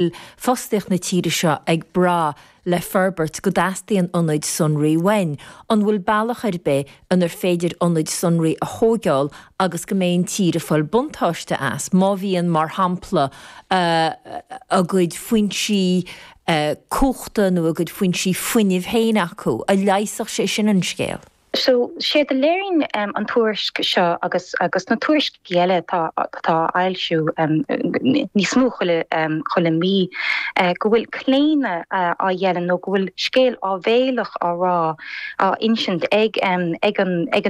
bhfuil fostaíocht na tíre seo ag brath le forbairt go dteastaíonn ionaid sonraí uainn? An bhfuil bealach ar bith inar féidir ionaid sonraí a thógáil agus go mbeidh an tír ag fáil buntáiste as, má bhíonn, mar shampla, a gcuid foinsí cumhachta nó a gcuid foinsí fuinnimh féin acu? An leigheasfadh sé sin an scéal? Sea, séard a léiríonn an tuairisc seo agus na tuairiscí eile atá á bhfoilsiú níos mó chuile mí, go bhfuil claonadh á dhéanamh nó go bhfuil scéal áibhéileach á rá, á insint ag an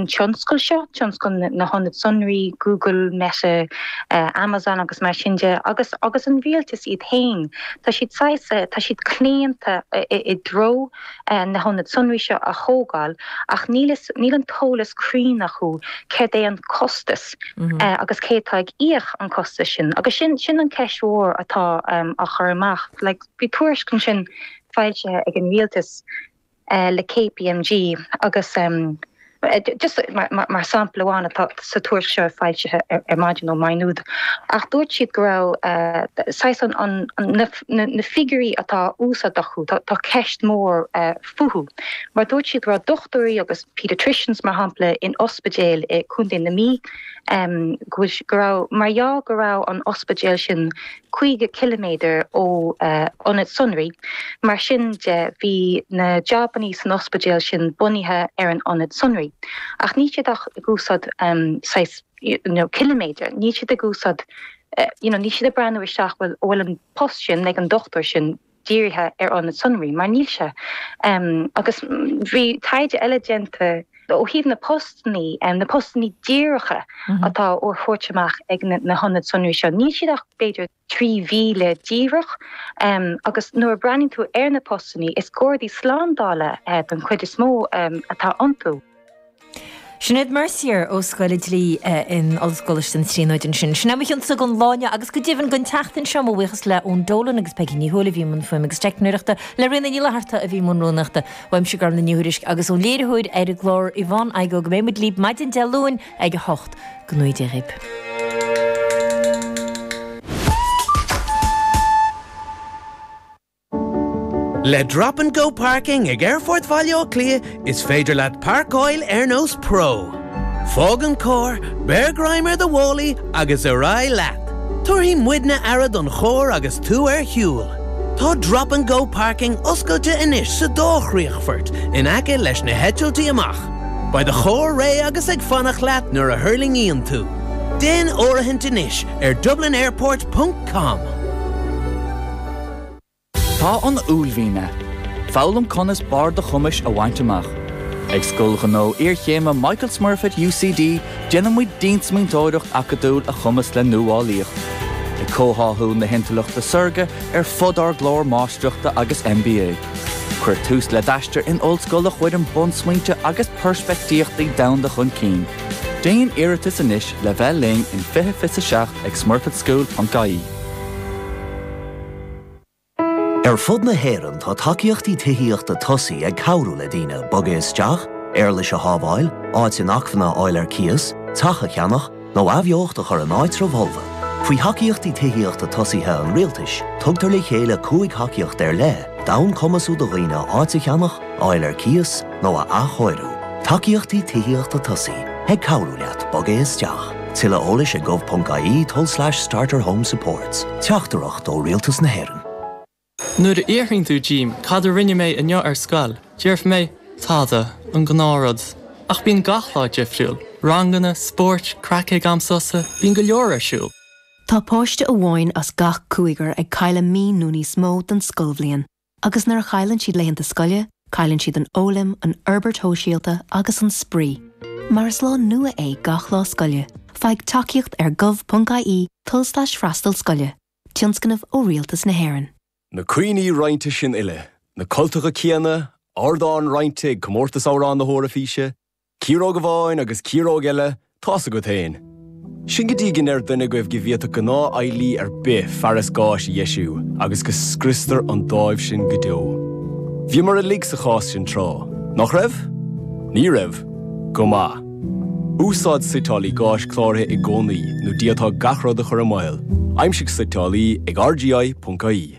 tionscal seo, tionscal na hionad sonraí, Google, Meta, Amazon agus mar sin de, agus an rialtas iad féin. Tá siad saghas, tá siad claonta i dtreo. na hionaid sonraí seo a thógáil ach níl níl an t-eolas cruinn acu céard é an costas agus cé atá ag íoc an costas sin agus sin sin an ceist mhór atá á cur amach like bhí tuairisc ansin foilsithe ag an rialtas le KPMG agus Just mar shampla amháin atá sa tuairisc seo foilsithe ar maidin ó Maigh Nuad, ach dúirt siad go raibh saghas an, na figiúirí atá á úsáid acu, tá ceist mhór fúthu. Mar dúirt siad go raibh dochtúirí agus paediatricians, mar shampla, in ospidéal i Co. na Mí, go raibh, mar gheall go raibh an t-ospidéal sin, 50 ciliméadar ó ionad sonraí. Mar sin de, bhí na jobannaí san ospidéal sin bunaithe ar an ionad sonraí. Ach níl siad ach ag úsáid saghas ciliméadair, níl siad ag úsáid, you know, níl siad ag breathnú isteach, bhuel, an bhfuil an post sin ag an dochtúir sin, dírithe ar ionad sonraí, mar níl sé. Agus bhí taighde eile déanta ó thaobh na postannaí, na postannaí díreacha atá á dtabhairt amach ag na hionad sonraí seo, níl siad ach b'fhéidir 3,000 díreach agus nuair a bhreathnaíonn tú ar na postannaí, is gardaí slándála den chuid is mó atá iontu. Sinéad Mercier ó Scoil an Dlí in Ollscoil Choláiste na Tríonóide ansin. Sin a mbeidh againn don lá inniu agus go deimhin don tseachtain seo. Mo bhuíochas le Eoin Dolan agus Peadar Mac an Iomaire a bhí i mbun fuaime agus teicneoireachta, le Ríona Ní Fhlatharta a bhí i mbun rúnaíochta, Aimsie Gorman le nithe tuairisc agus ón léiritheoir ar an gclár Yvonne Igoe go mbeidh muid libh maidin Dé Luain ag a hocht. Go gcumhdaí Dia dhaoib. Le Drop and Go Parking ag Aerfort Bhaile Átha Cliath is féidir leat parcáil ar nós pro. Fág an carr, beir greim ar do mhálaí agus ar aghaidh leat. Tabharfaidh muidne aire don charr agus tú ar shiúl. Tá Drop and Go Parking oscailte anois sa dá chríochfort in aice leis na heitiltí amach. Beidh do charr réidh agus ag fanacht leat nuair a thuirlingíonn tú. Déan áirithint anois ar dublinairport.com. Tá an uaillmhian ann. Foghlaim conas barr do chumais a bhaint amach. Ag Scoil Ghnó Iarchéime Michael Smurfit UCD déanann muid diansmaointeoireacht acadúil a chumasc le nuálaíocht, ag comhtháthú na hintleachta saorga ar fud ár gclár Máistreachta agus MBA. Cuir tús le d'aistear in ollscoil a chuireann bunsmaointe agus peirspictíochtaí domhanda chun cinn. Déan iarratas anois le bheith linn in 2027 ag smurfitschool.ie. Ar fud na hÉireann tá tacaíochtaí tithíochta tosaithe ag cabhrú le daoine bogadh isteach, éarlais a shábháil, áit inacmhainne a fháil ar cíos, teach a cheannach, nó athbheocht a chur in áitribh fholmha. Faoi Thacaíochtaí Tithíochta Tosaithe an Rialtais, tugtar le chéile cúig thacaíocht ar leith d'fhonn cumasú do dhaoine áit a cheannach, a fháil ar cíos, nó a athchóiriú, tacaíochtaí tithíochta tosaithe ag cabhrú leat bogadh isteach. Tuilleadh eolais ag gov.ie tulslais starterhomesupports, Teachtaireacht ó Rialtas na hÉireann. Nuair a fhiafraíonn tú díom cad a rinne mé inniu ar scoil, déarfaidh mé, tada, an gnáthrud. Ach bíonn gach lá difriúil. Ranganna, spóirt, craic ag am sosa, bíonn go leor ar siúl. Tá páiste amháin as gach cúigear ag cailleadh mí nó níos mó den scoilbhliain. Agus nuair a chailleann siad laethanta scoile, cailleann siad an fhoghlaim, an fhorbairt shóisialta agus an spraoi. Mar is lá nua é gach lá scoile, faigh tacaíocht ar gov.ie tulslais freastal scoile, tionscnamh ó Rialtas na hÉireann. Na cuimhní roinnte sin uile, na cultacha céanna, ardán roinnte ag Comórtas Amhrán na hEoraifíse, Ciaróg amháin agus ciaróg eile, tá's agat fhéin. Sin go dtí go ndeireann duine agaibh go bhféadfadh gnáth-fheighlí ar bith fearas gáis a dheisiú agus go scriostar an dáimh sin go deo. Bhíomar uilig sa chás sin tráth, nach raibh? Ní raibh? Go maith. Úsáid suiteálaí gáis cláraithe i gcónaí nó d'fhéadfá gach rud a chur i mbaol, aimsigh suiteálaí ag rgi.ie.